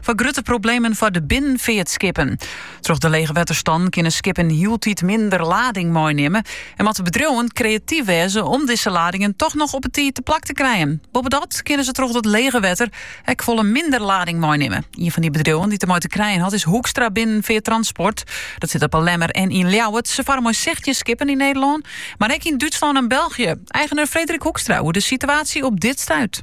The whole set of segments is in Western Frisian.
foar grutte problemen foar de binnenfeartskippen. Troch de lege wetterstannen kinne skippen hieltyd minder lading meinimme en moatte bedriuwen kreatyf wêze om dizze ladingen toch noch op 'e tiid te plak te krijen. Boppedat kinne se troch dat lege wetter ek folle minder lading meinimme. Ien fan dy bedriuwen dy't dermei te krijen hat is Hoekstra Binnenfeart Transport. Dat sit op Lemmer en yn Ljouwert. Se farre mei sechstjin skippen yn Nederlân, mar ek yn Dútslân en België. Eigener Frederik Hoekstra oer de situatie op dit stuit.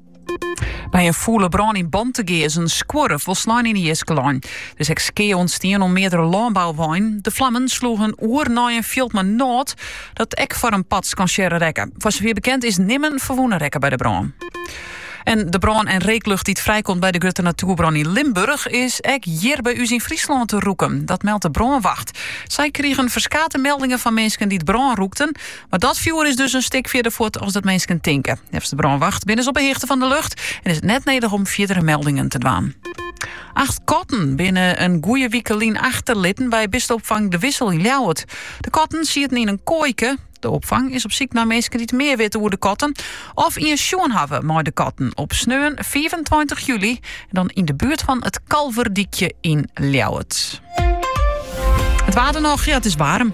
By in fûle brân yn Bantegea is in skuorre folslein yn 'e jiske lein. Der is ek skea ûntstien oan meardere lânbouweinen. De flammen sloegen oer nei in fjild mei nôt, dat ek foar in part skansearre rekke. Foar safier bekend is nimmen ferwûne rekke by de brân. En de brân en reeklucht dy't frijkomt by de grutte natuerbrân yn Limburch is ek hjir by ús yn Fryslân te rûken. Dat meldt de brânwacht. Sy krigen ferskate meldingen fan minsken dy't brân rûkten. Mar dat fjoer is dus in stik fierder fuort as dat minsken tinke. Neffens de brânwacht binne se op 'e hichte fan de lucht en is it net nedich om fierdere meldingen te dwaan. Acht katten binne in goede wike lyn achterlitten by bisteopfang De Wissel yn Ljouwert. De katten sieten yn in koaike. De opfang is op syk nei minsken dy't mear witte oer de katten of ien sjoen hawwe mei de katten op sneon 25 july en dan yn de buert fan it Kalverdykje yn Ljouwert. It waar dan noch, ja, it is waarm.